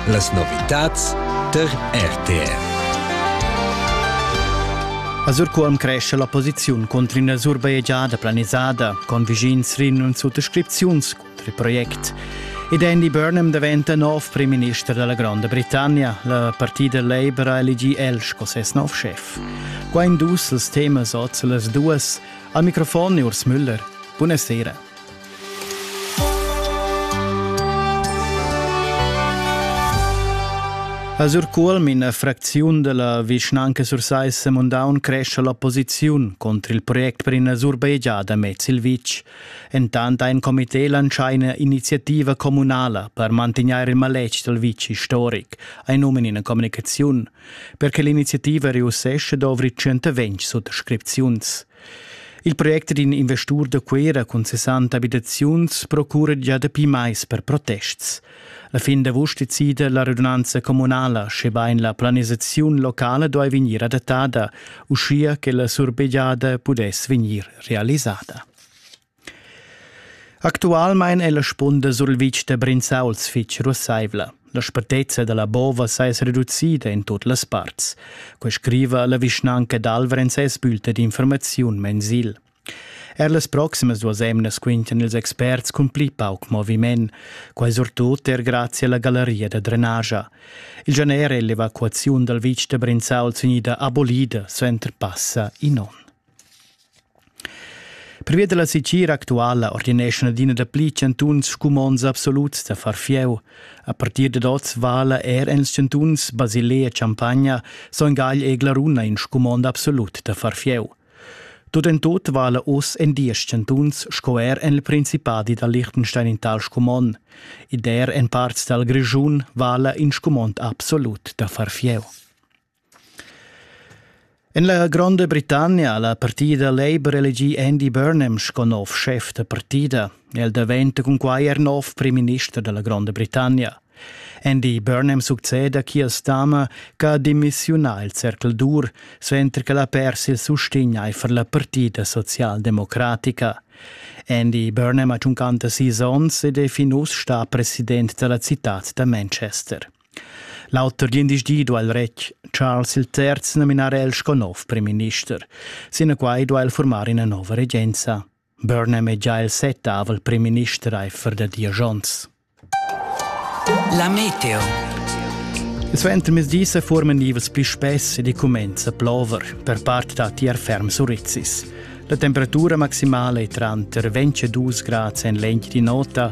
Las novitads tar RTF. A Surcuolm cresce la posiziun contro una surbajegiada planisada con vischins rin und Suttorscripziuns contro il project. Ed Andy Burnham diventa nov prim minister della Grande Britannia. La partida Labour ha elegì el sco ses nov chef. Qua in dus els temas oz las duas. Al microfon Urs Müller. Buonasera. A Surcuolm, ina fracziun dalla vischnanca Sursaissa Mundaun crescha la posiziun contro il project per ina surbegiada mez il vitg. Entant ein comité lancià ina iniziativa communala per mantegnair il maletg dal vitg historic, ein nomen ina communicaziun. Per che l'iniziativa reussesce dovri 120 suttascripziuns. Il project d'in investur da Cuera cun 60 abitaziuns procura gia dapi mais per protests. La fin d'avust decida la radunanza communala, schebain la planisaziun locala duai vegnir adattada, uschia che la surbegiada pudess vegnir realisada. Actualmein è la spunda sur il vitg da Brinzauls fitg russaivla. La spetezza da la bova s'è reducida in tut las parts. Quei scriva la vischnanca d'Alvrenz es bülta d'informaziun mensil. Er las proximas duas emnas quintan ils experts cun pli pauc moviment, quai surtut er grazie alla galleria da drenagia. Il gener è l'evacuaziun dal vitg da Brinzauls unida abolida suenter passa in onn. Pervia dalla sitgira actuala ordineschan adina dapli chantuns scumonds absoluts da far fieu. A partir dad oz vala er en chantuns Basilea Champagna, Son Gagl e Glaruna in scumond absolut da far fieu. Tut en tut vala oz en diesch chantuns sco er en il Principadi da Liechtenstein in tal scumond. Ed er en parts dal Grischun vala in scumond absolut da far fieu. En la Gronda Britannia ha la partida Labour elegì Andy Burnham sco nov schef da partida. El daventa cunquai er nov primminister da la Gronda Britannia. Andy Burnham succeda Keir Starmer che ha demissiunà il cercl dur, suenter che l'ha pers il sustegn aifer la partida socialdemocratica. Andy Burnham ha 56 onns ed è fin uss stà president da la citad da Manchester. L'auter gliendisdi duai il retg Charles III nominar el sco nov primminister. Sinaquai duai el formar ina nova regenza. Burnham è già il settavel primminister aifer da dies onns. La meteo. Suentermezdi se forman nivels pli spess ed i cumenza plover, per part da tier ferm surizzis. La temperatura maximale è tranter 22 grad en lenti di nota